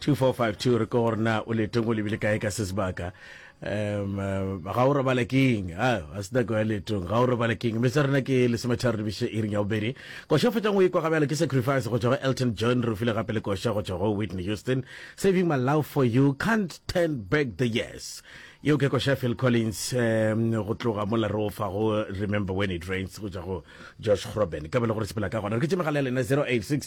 2452 re ko gore na o letong o lebile kae ka se sebaka um eh, ga o robala keng a a se nako ya letong ga o robala keng mme tsa rona ke lesometharo le biše iring ya bobedi koša fetang o e kwa gabjalo ke sacrifice go tswa go elton john re file gape le koša go tswa go whitney houston saving my love for you can't turn back the years yeo ke koša phil collins um go tloga mola re ofa go remember when it rains go tswa go josh groben ka bele gore sepela ka gona re ke tsemegala ya lena 086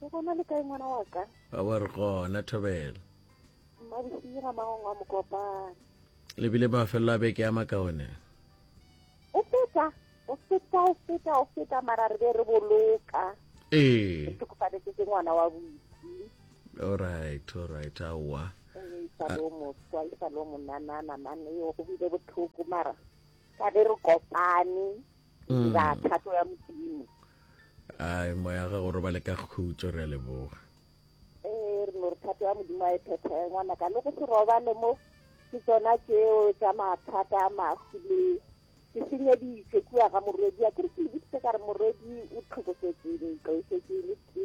Ke gona le kae ngwana wa ka? A wa re gona Thobela. Mmabisiye ga magong a mokopane. Le bile mafelelo a beke a makaone. O feta, o feta, o feta, o feta mara re be re boloka. Ee. Ke tlhokofaletse ke ngwana wa busi. All right, all right, aowa. Ee, sa lo mo tswa, sa lo mo nanana mane yo go bile botlhoko mara ka be re kopane. mm. ya thato ya modimo ai moya ga go robale ka khutso re a leboga ee re no re thato ya modimo a e phethege ngwana ka le go se robale mo ke tsona tseo tsa mathata a mafu le ke senyeditse kua ga morwedi a kere ke leboditse ka re morwedi o tlhokofetseng tlwaisetseng le ke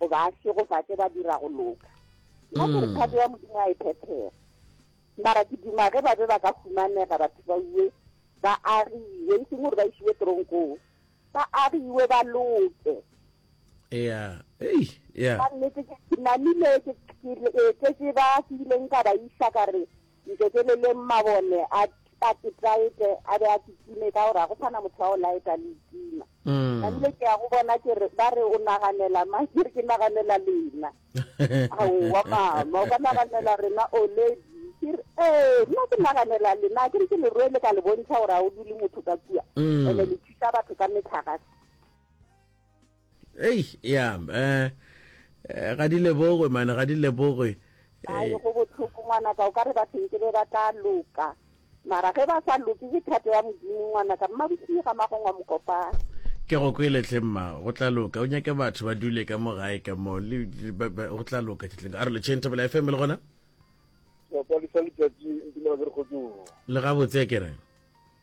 goba a šegofatše ba dira go loka nna ke re thato hmm. ya modimo a e phethega mara ke duma ge ba be ba ka humanega batho ba uwe ba agiwe e seng gore ba isiwe tronkong ba agiwe ba loke ea ei ea ka nnete ke namile ke tletse ba ke ileng ka ba isa ka re Nteteleleng mabone a patetaete a be a se time ka gore ga go sana motho wa go laeta le itima. Mm. Namile ke ya go bona ke re ba re o naganela ma ke re ke naganela lena. Aowa mama o ka naganela rena oledi ke re ee nna ke naganela lena ke re ke leroe le ka le bontšha gore ga o dule motho ka kua mm. ene le thusa batho ka metlhagase ei ya um eh, eh, ga di lebogwe mane ga di lebogwe ae eh. go botlhoko ngwanaka o ka re bathonke be ba tla loka mara ge ba sa loke ke thato ya modimo ngwanaka mmabosii ga magongwa mokopana ke go kweletlhe mma go tla loka o nyake batho ba dule ka mo gae ka mo go tla loka tletleng a re lecheng thabela fm le gona le gabotse ke reng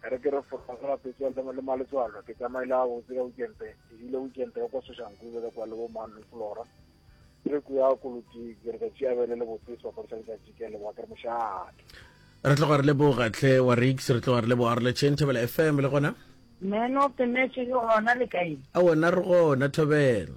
Ka re ke re fora go rapetša le le maletswalo, ke tsamaile gabotse ka Weekend, ke hwile Weekend ya kwa Soshanguve ka kwa le bo man le Flora. Ke re ko ya Koloti ke re ka tšea bele le botse sebapadi sa letšatši ke a leboga ke re mošate. Re tloga re leboga tlhe wa Rix, re tloga re leboga re le Chen Thobela FM le gona. Man of the match le gona le kae? A wena re gona Thobela.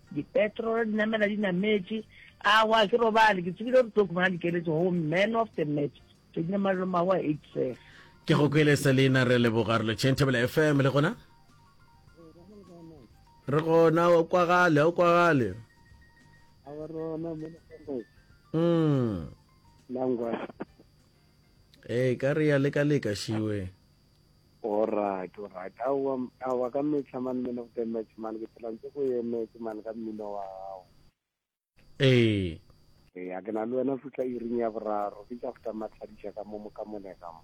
Dipetro re di namela di nametše. Awa, ke robale, ke tsebile gore tlo khumana dikeletso go man of the match. Ke dine malolo mawa eight sir. Ke go kwele Selina re leboga re lo Chantabela FM le gona. Re gona o kwagale, o kwagale. Awa rona mo le. Mm. Langwa. Eh, ka re ya leka leka shiwe. Alright, alright. Aowa, aowa ka mehla man, man of the match man, ke phela ntse go emetse man ka mmino wa gago. Ee. Ee, a ke na le wena fihla iring ya boraro, ke tša fta matlhadiša ka mo mo ka mone ka mo.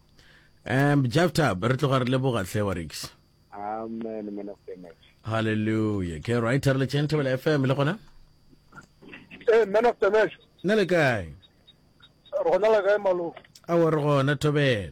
Um, Jafta, re tloga re leboga hle wa Rix. Amen, man of the match. Hallelujah. Ke right re le tšeng Thobela FM le gona? Eh, man of the match. Ne le kae? Re gona le kae malo? Aowa re gona Thobela.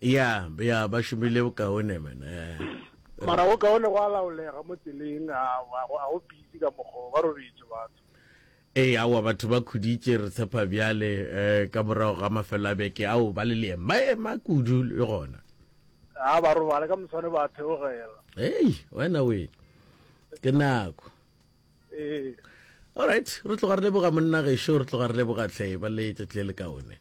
Ya, ya, ba šomile bokaone, man. Mara go kaone go a laolega mo tseleng, a, a, a go busy ka mokgwa, ba robetše batho. Ee, aowa, batho ba khuditše, re tshepa bjale, eh, ka morago ga mafelo a beke, ao, ba le leema, ba ema kudu le gona. A ba robale, ka moswane ba theogela. Hei, wena we, ke nako. Ee. All right, re tloga re leboga monna gešo, re tloga re leboga tlhe, ba le tšatši le le kaone.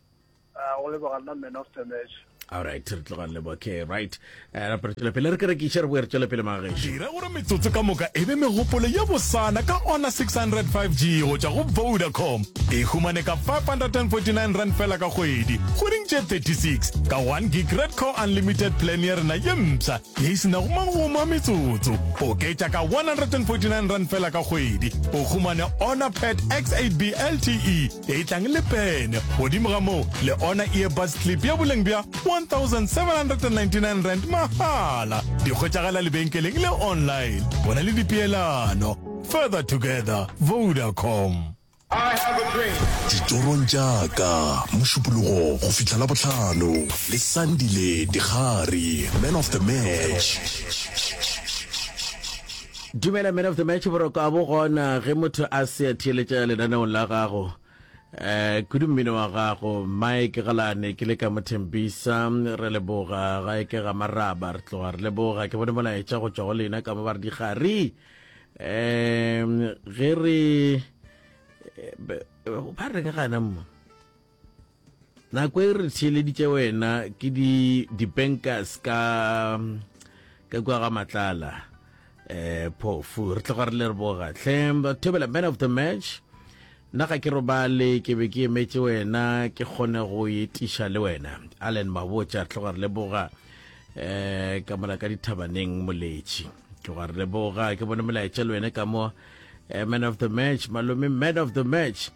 ah, go leboga nna man of the match alright re tloga lebo okay right eh, ra pele pele re kere ke tshere bo re tswele pele mageshi dira gore metsotso ka moka e be megopolo ya bosana ka ona 605g go tšwa go vodacom e humane ka 549 rand fela ka kgwedi go ding tše 36 ka 1 gig red core unlimited plan ya rena ye mpsha ye e senago mangoma metsotso oketša ka 149 rand fela ka kgwedi o humane ona pet x8b lte e tlang le pene godimo ga moo le ona earbuds clip ya boleng bja 1799 rand mahala di kgotšagala lebenkeleng le online go na le dipeelano further together vodacom ditorong tšaka mošupologo go fihla la botlhano le sandile dikgari man of the match Dumela man of the match boroko a bo gona ge motho a se a theeletša lenaneong la gago eh kudu mmino wa gago mike galane ke le ka mothembisa re leboga ga e ke ga maraba re tloga re leboga ke bone molaetša go tšwa go lena ka mo ba re dikgari um ge re eh, be- ba reng gana mo Nako e re theeleditše wena ke di dibankers ka ka kwa ga matlala eh phofu re tloga re le re boga hle thobela man of the match nna ga ke robale ke be ke emetše wena ke kgone go etiša le wena allen mabotša re tloga re leboga um ka mola ka dithabaneng moletši tloga re leboga ke bone molaetša le wena ka mo eh, man of the match malome man of the match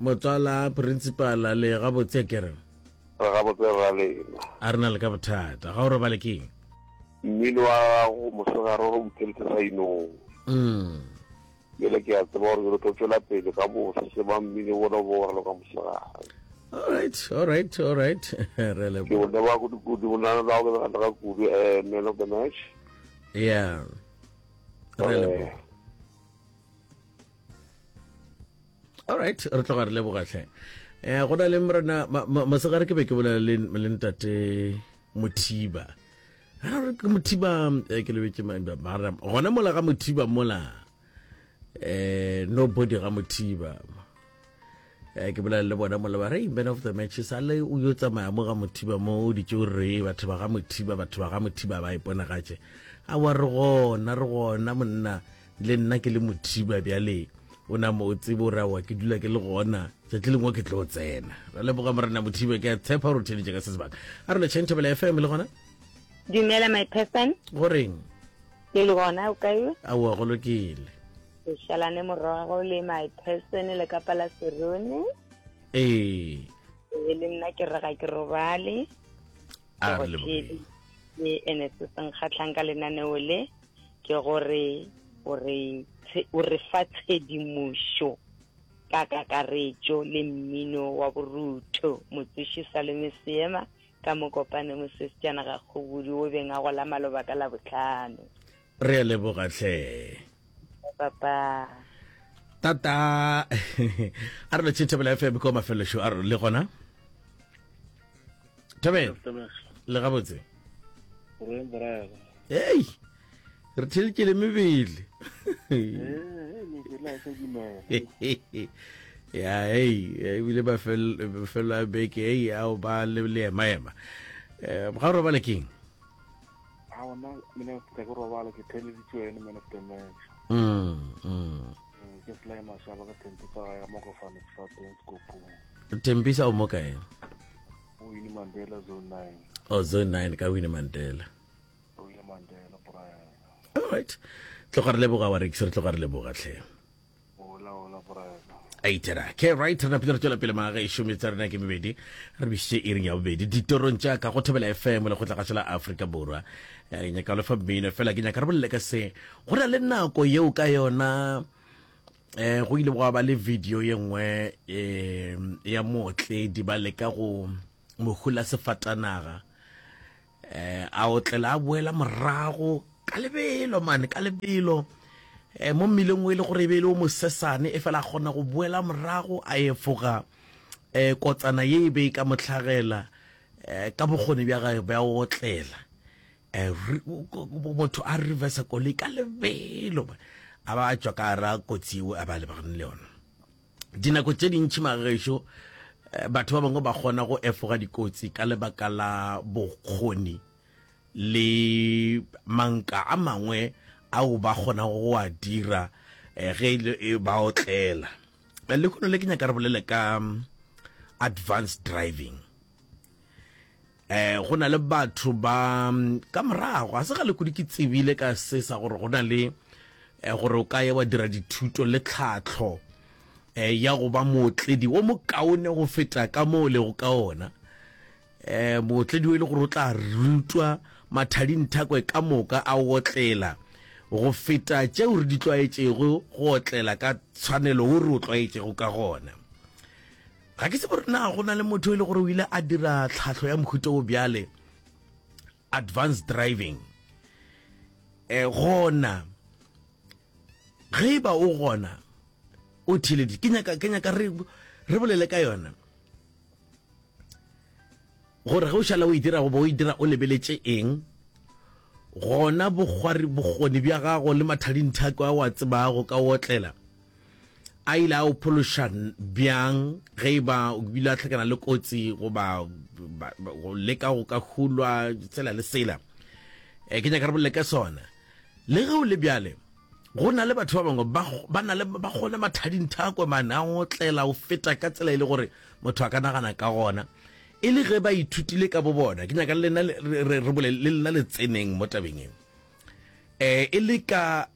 Motswala Principala, le gabotse ke re? Re gabotse rra lena. A re na le ka bothata. Ga o robale ke eng? Mmino wa gago mosegare o re butheletše sainong. Umm. Bjale ke a tseba gore ke lo tlo tšwela pele ka bose ba mmino bona bo wa loka mosegare. All right, all right, all right. Re le. Ke o leboga kudu kudu bona le ga o ke ga kudu eh man of the match. Yeah. Re leboga. all right re tloga re lebogatlhe um eh, go na le morena mosegare ke be ke bolela le ntate mothiba ke mothiba eh, ke lebetse gona mola ga mothiba mola um nobody ga mothiba um ke bolela le bona mola ba re man of the matches a le o yo tsamaya mo ga mothiba mo o ditse o re batho ba ga mothiba batho ba ga mothiba ba iponagatše a wa re gona re gona monna le nna ke le mothiba bjale o na mo o tsebe o rawa ke dula ke le gona tšatši lengwe ke tlo tsena ra leboga morena mothiba ke a tshepa gore o theletše ka se sebaka a re lecheng thobela fm le gona dumela my person go reng ke le gona o kae aowa go lokile ke šalane morago le my person le ka pala serone ee e le nna ke rega ke robale a re leboga e ene se senkgatlhang ka lenaneo le ke gore o re o re fa tshedimošo ka kakaretšo le mmino wa borutho motsoši salome seema ka mokopane mosesejana ga kgobudi o beng a go la maloba ka labotlhano re a leboga tlhe papa tata a re le tšhethebela fm ko mafelosho a re le gona thabela le gabotse ei re thelkele mebele ya ei ebile bafelo a beke ei ao ba le leemaema um ga o robale keng a ona mina ke robala ke theleditswe ene man of the match mm, mm. Mm, ke sly mashaba ka tempisa ga ya mokofane sefateng sekopong tempisa o mo kae o wine mandela zone nine o oh, zone nine ka wine mandela o wine mandela brian alright tloga re leboga wa rekise re tloga re leboga tlhe eitera ke right re napile re tswela pele maaga e šome tsa rena ke mebedi re bišitše e reng ya bobedi ditorong tša ka go thobela fm le go tla ga tšela aforika borwa eh, nyaka lo fa mmino fela ke nyaka re bolele ka se Go na le nako yeo ka yona eh, go ile gwa ba le video ye nngwe eh, ya mootledi ba leka go mohula sefatanaga eh, a otlela a boela morago ka lebelo mane ka lebelo eh, mo mmileng o e le gore e be e le o mosesane e fela a kgona go boela morago a efoga eh, kotsana ye e be e ka motlhagela eh, ka bokgoni bja gae bja otlela Eh, motho a reversa koloi ka lebelo a ba a tswa ka ara kotsi eo a ba lebagane le yona dinako tse dintšhi magešo eh, batho ba bangwe ba kgona go efoga dikotsi ka lebaka la bokgoni le manka a mangwe ao ba kgona go a dira eh, ge e ba otlela le kgono le ke nyaka re bolele ka mm, advanced driving Eh, go na le batho ba ka morago ga se ga lekodi ke tsebile ka se sa gore go na le eh, gore o ka ye wa dira dithuto le tlhatlho eh, ya go ba mootledi o mokaone go feta ka mo o lego ka ona eh, mootledi o e le gore o tla rutwa mathadinthakwe ka moka a otlela go feta tšeo re di tlwaetšego go otlela ka tshwanelo o re o tlwaetšego ka gona Ga ke tsebe gore na go na le motho e le gore o ile a dira tlhahlo ya mohuto o bjale advanced driving e gona ge e ba o gona o theleditse ke nyaka ke nyaka re re bolele ka yona gore ge o šala o e dira goba o e dira o lebeletše eng gona bokgoni bja gago le mathadinthako a wa tsebago ka otlela A ile a o phološa bjang ge e ba o bile a hlakana le kotsi goba go leka go ka hulwa tsela le sela? E, ke nyaka re bolele ka sona. Le ge o le bjale, go na le batho ba bangwe ba na le ba gona mathading thakwe mane a ngotlela o feta ka tsela e le gore motho a ka nagana ka gona e le ge ba ithutile ka bo bona ke nyaka le lena re bolele le lena le tseneng mo tabeng eo eh e le ka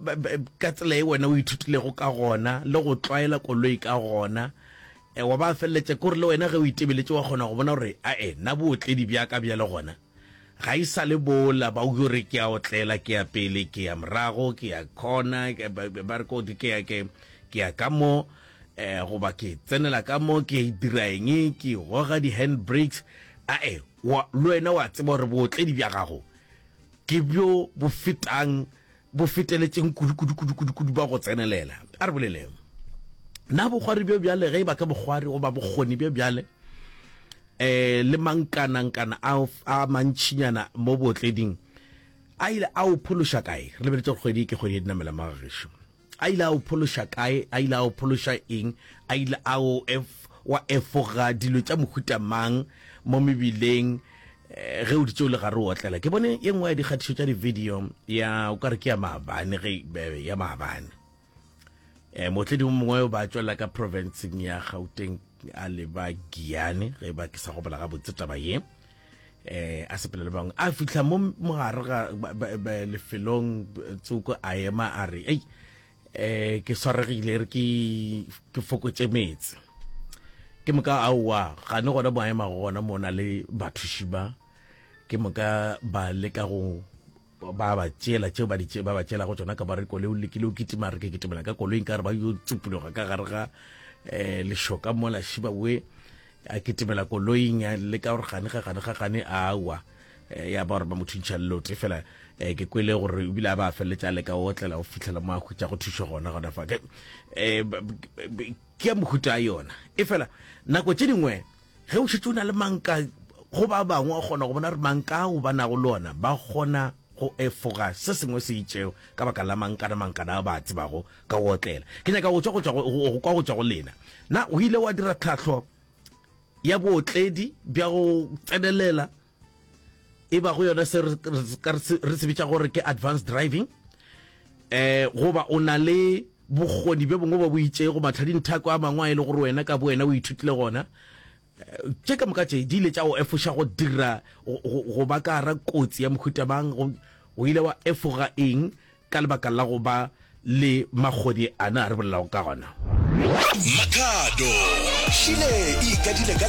ka tsela e wena o ithutilego ka gona le go tlwaela koloi ka gona eh, wa ba feleletša kore le wena ge o itebeletše wa kgona go bona gore a e na bootledi bja ka bja le gona ga e sa le bola ba uke gore ke ya otlela ke ya pele ke ya morago ke ya khona ba re kodi ke ya ke ke ya ka mo eh goba ke tsenela ka mo ke e dira eng ke goga di hand brakes a e le wena wa tseba gore bootledi bja gago Ke bjo bo fetang, bo feteletšeng kudu, kudu, kudu, kudu, kudu ba go tsenelela. A re boleleng na bokgwari bjo bjale, ge e ba ke bokgwari goba bokgoni bjo bjale, um le mankanankana a, a mantšinyana mo bootleding, a ile a o phološa kae? Re lebeletše gore kgwedi e ke kgwedi ya dinamela, Magagešu. A ile a o phološa kae? A ile a o phološa eng? A ile a o ef, wa efoga dilo tša mohuta mang mo mebileng eh, ge o di tšeo le gare o otlela? Ke bone ye nngwe ya dikgatišo tša di-video ya o ka re ke ya maabane ge be- be- ya maabane eh, mootledi o mongwe o ba tšwelela ka provinceng ya gauteng a leba giane ge ba ke sa gopola gabotse taba ye eh a sepele le bangwe a fihla mo mogare ga lefelong tsoko a ema a re ei eh ke swaregile re ke ke fokotse metse ke moka a wa ga ne gona boema gona mona le bathuši ba ke moka ba leka go ba ba tšela tšeo ba di ba ba tšelago tsona ka ba re koloi o lekile o kitima re ke kitimela ka koloi nka re ba yo tsupuloga ka gare ga um lešoka mola shiba we a kitimela koloing a le ka gore gane ga gane ga gane a wa eh, ya ba gore ba mo thuntšha lelote fela um ke kwele gore ebile a ba feleletse a leka o otlela go fitlhela mo a khutsa go thušo gona gona fa um ke ya mohuta a yona e fela nako tše dingwe Ge o šetše o na le manka go ba bangwe, o kgona go bona gore manka ao ba nago le ona ba kgona go efoga se sengwe se itšego ka baka la mankana mankana a ba a tsebago ka go otlela. Ke nyaka go kwa go tšwa go lena. Na o ile wa dira tlhahlo ya bootledi bja go tsenelela? e bago yona se re se bitša gore ke advanced driving eh goba o na le bokgoni bjo bongwe ba bo itšego matlhadinthako a mangwe a e le gore wena ka bo wena o ithutile gona eh, tše ka moka tše di ile tša go efoša go dira go ba ka gara kotsi ya mohuta mang o ile wa efoga eng ka lebaka la go ba le magodi ana a re bolelago ka gona makhado šile e ikadile ka